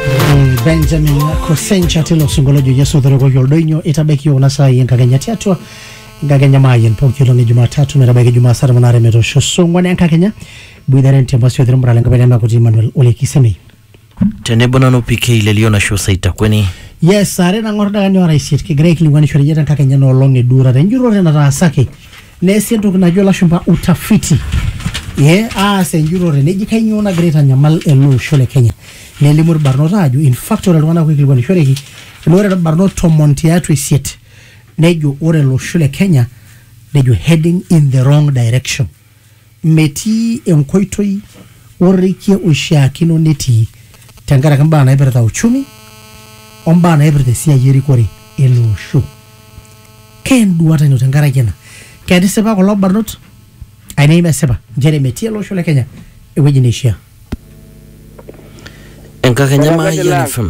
Mm, benjamin kosencha tilo singoliojo yesu otorikoki oldoinyo eitabaiki kuna saai enkakenya tiatua enkakenya maayian pooki olong e jumatatu metabaiki jumaa saa tomon aare metoosho saa ong'uan enkakenya boitare ntempasi othirumura lenkapai nemakuti emmanuel ole kisemei tenebo nanu PK lelio nasho saitakweni yes are nang'or dakani ora isiet kigira aikilikwanishore iyiok tenkakenya enoolong eduurata enjurrore nataasaki Neesi entoki najo lashumpa utafiti ee aas enjurore neji kainyoo nagira aitanyamal ele osho le Kenya. Nelimu ilbarnot aajo in fact ore iltung'ana oikilikuanishoreki naa ore ilbarnot tomon tiatua isiet nejo ore olosho le Kenya nejo heading in the wrong direction. Metii enkoitoi orrekie oishiakino netii tenkaraki mbaa naipirta uchumi o mbaa naipirta esiai erikore ele osho. Kaa enduata ino tenkaraki ena? Ketisipa kulo barnot ainei mesipa nchere metii ele osho le Kenya ewueji neishiaa? Enkakenya Mayian FM.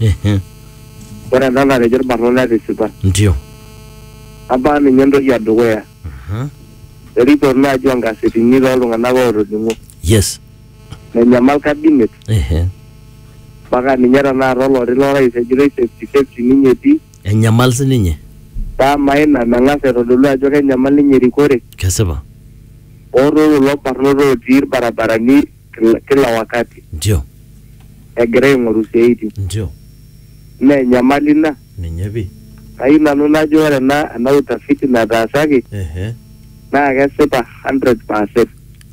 Ehe. Ore ena natejo irbarnot netisipa. Ndio. Abaa ninye entoki edukuya. Aha. Erikor naaji onkasetini toltung'anak ootoning'o. Yes. Menyamal cabinet Ehe. mpaka ninye tenakata oloti lorais ejitoi safety safety ninye etii. Enyamal sininye. Paa amaa ina meng'as aitodolu ajo kenyamal ninye erikore. Kesipa. Ootoo kulo barnot otii irbarabarani kila, kila wakati ndio egira aing'oru siaitin ndio naa enyamali ina ninye pi kayieu nanu najo ore ena ena utafiti nataasaki ehe naa kesipa 100 percent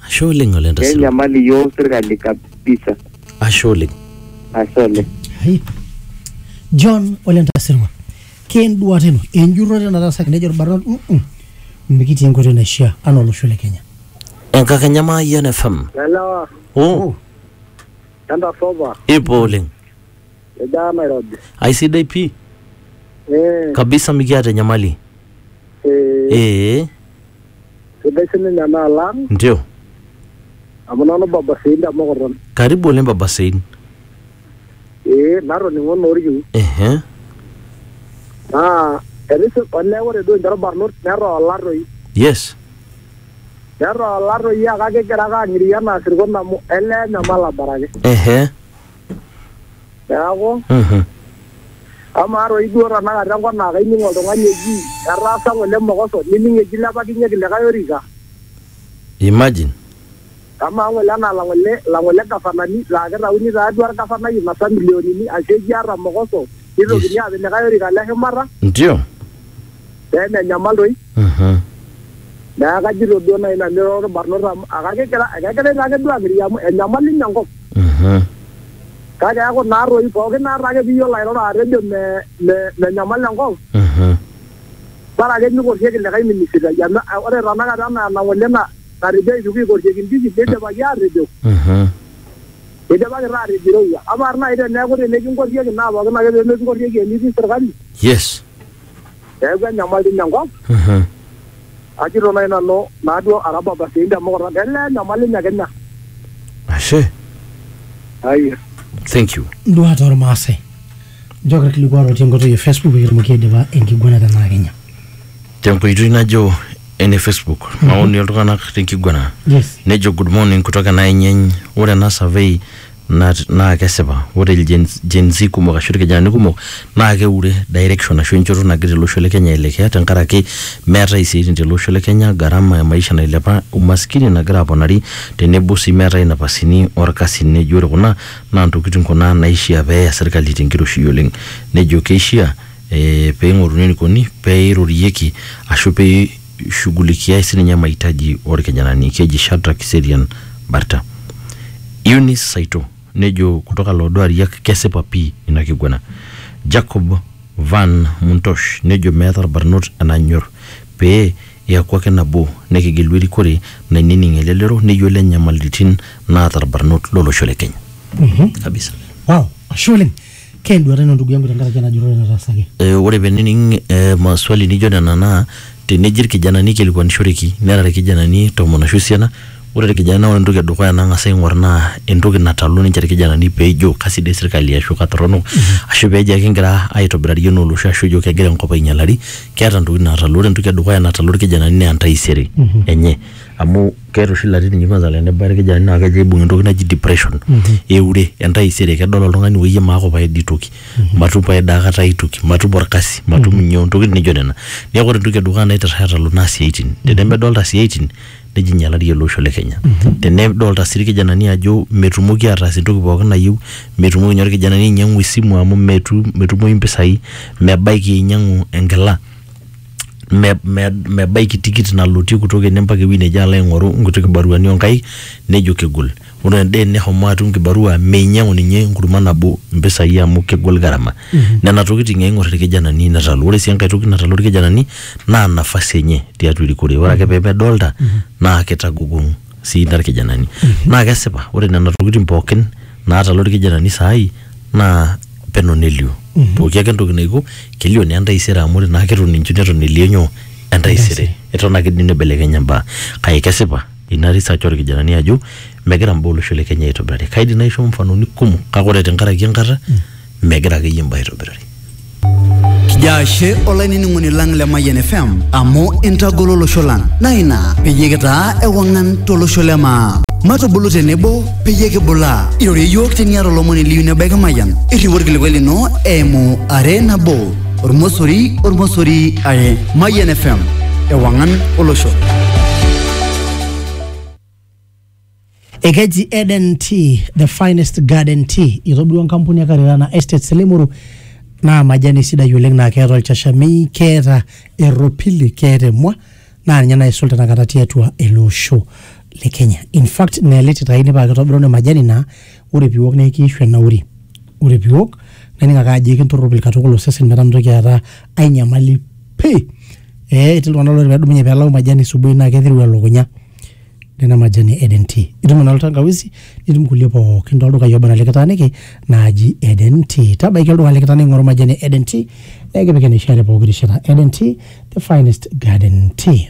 ashe oleng oleng tasilo kenyamali iyiook sirkali kabisa ashe oleng ashe oleng Hai. John Ole Ntasirwa. Kenduata ino, enjurrore nataasaki nejo irbarnot, "Mm-mm, mikitii enkoitoi naishiaa anaa olosho le Kenya. enkakenya maayian fm Lelewa, oh tanda soba, ipo oleng ejaa Nairobi. aisidai pii Eh, kabisa mikiata enyamali eh, ee sidai sininye ena alang ndio amu nanu baba sii ntemokoton. karibu oleng baba sein Ee natoning'o naa orkiu. Ehe. Naa etisip olee ore duo ninche irbanot netoola toi. Yes. Netoola toi kake kigira ake ang'iria anaa isirkon amu elee enyamal abaraki. Ehe. Neeku Mhm. amaa toi duo tenakata enkop naa kaining oltung'ani eji etaasa ng'ole mokoso nining eji ilepakinyeki likae orika. Imagine. Amaa ng'ole anaa lang'ole lang'ole gafanani laa keitauni taatua lgafanai masaa milionini aashu ekiaata mokoso neitokini aapik likae orika le shumata Ndio. pee menyamal doi. Mhm. Neaku kajito duo naaji nanu ira olbarnot amu ekegira ekegirai taake duo aakiti amu enyamali ninye enkop. Mhm. Kake eaku naa toi pooki naa taake piiyiolo airoro atejo me me menyamal enkop Mhm. bora ake mikorrieki likae minisitai amu ore tenakata anaa enang'ole naa natejo aituku eikorrieki ndiki, neidipaki aatejo Aha. eidipaki taa aatejo eirowua. Amaa naaji teneeku tenikinkorrieki naa pookin ake pee mekinkorrieki enitii sirkali Yes. neeku enyamali ina enkop. Aha. Ajito naaji nanu naaduo ara babasiai te mukutan elee enyamali ine Kenya. Ashe. Ai. Thank you. nduat ormaasai Nchooki ilkilikuat otii enkoitoi e Facebook pee kitumoki aidipa enkiguana tenaa Kenya. tenkoitoi najo ene Facebook maoni oltung'anak tenkiguana Yes. nejo good morning kutoka Naenyeny ore ena survey nat- naa kesipa ore ilgen- Gen Z kumok ashu irkijanani kumok naa keure direction ashu enchoto nagira ele osho le Kenya aelekea tenkaraki meetae isiaitin tele osho le Kenya gharama e maisha nailepa umaskini nagira aponari tenebo sii meetae inapasini orkasin nejo ore kuna Naa ntokitin kuna naishia pee eya serkali te nkiroshi oleng. Nejo keishia pee eing'oruni eneikoni pee eirorieki ashu pee eishugulikiai sii ninye maitaji oo lkijanani. Keji Shadrack Kiserian Barta. Eunice Saitoo nejo kutoka Looduariak kesipa pii ina kiguana. Jacob Van Muntosh nejo meeta lbarnot enanyor pee Eaku ake nabo, nekigelu erikore nainining elelero neyiolo enyamaliritin naata ilbarnot lo losho le Kenya. Kabisa. Wow, ashe oleng. Ke enduata ino ndugu yangu tenkaraki ena jurrore nataasaki? E, ore penining e, maswali nijo nena naa teneji ilkijanani eikilikuanishoreki nera ilkijanani tomon ashu esiana, Ore irkijanani ore entoki edukuya nang'as aing'or naa entoki natalu ninche irkijanani peejo kasidai sirkali ashu katorrono ashu peejo ekingira aitobirari enaa olosho ashu ejo kegira enkop ainyialari keeta intokitin naatalu. Ore entoki edukuya natalu irkijanani naa entaisere enye amu keeta oshi ilatitin inji kwanza tenebaya irkijanani naa kejo aibung entoki naji depression eure entaisere kedol oltung'ani woyie maaku pae dii toki matum pae daa kata ae toki matum orkasi matum nyoo intokitin nijio nena. Neeku ore entoki edukuya naitirra aatalu naa isiaitin tenemedolita isiaitin nejo inyialari ele osho le Kenya. Tenedolta sii irkijanani ajo metumoki ataas entoki pookin nayieu, metumoki ninye orkijanani ainyiang'u esimu amu metu, metumoyu impisai, mebaiki ainyiang'u enkila, me, me, mebaiki tikit nalotie kutoka ene mpaka ewueji neje alo aing'oru inkuti kibaruani onkaik nejo kegol. Ore Dane neshomo atum kibarua meinyiang'u ninye enkurma nabo impisai amu kegol gharama. Nena tokitin eing'or ilkijanani netalu. Ore sii enkae toki natalu ilkijanani naa nafasi enye tiatua erikore. Ore ake pee medolita naa keitagogong sii ina ilkijanani. Naa kesipa ore nena tokitin pooki naatalu ilkijanani saai naa peno nelio. Pooki ake entoki naiko kelio naa entaisere amu ore naa keton inji neton elio nyoo, entaisere. Eton ake dii neibelekenya imbaa kake kesipa ina research orkijanani ajo megira mbaa olosho le Kenya aitobirari. Kaidim naisho mfanoni kumok kake ore tenkaraki enkata megira akeyie mbaa aitobirari. Kijo ashe olainining'oni lang le Mayian FM amu intagolo olosho lang naa ina peyie kitaa ewang'an tolosho le maa. Matubulu tenebo peyie kibulaa. Irorie iyiook teniata olomoni liyieu nebaiki Mayian. Irriu orkilikuai lino eimu are nabo. ormosori ormosori are mayian fm ewangan olosho ekeji eden tea the finest garden tea itobirua enkampuni e karirana estates limuru naa majani sidai oleng naa keeta olchashamei keeta erropili keeta emua naa ninye naisul tenakata tiatua ele osho le kenya in fact neeliti taa ine paa kitobiruni majani naa Ore piwok naa ekiishu enauri. Ore piwok naning ake ajo ekintoropil katukul osesen metaa mintoki aata ai nyamali pii. Eeh etii iltung'ana laa ore pedumunye pelau majani subui naa ketiu elukunya. Nena majani e Eden tea. Itum eno tangawizi nitum kulie pookin toldukai oba enaa likitaaniki naaji Eden tea. Tabaiki olduka likitaaniki ing'oru majani e Eden tea nikipik eneishaa te pooki rishata. Eden tea the finest garden tea.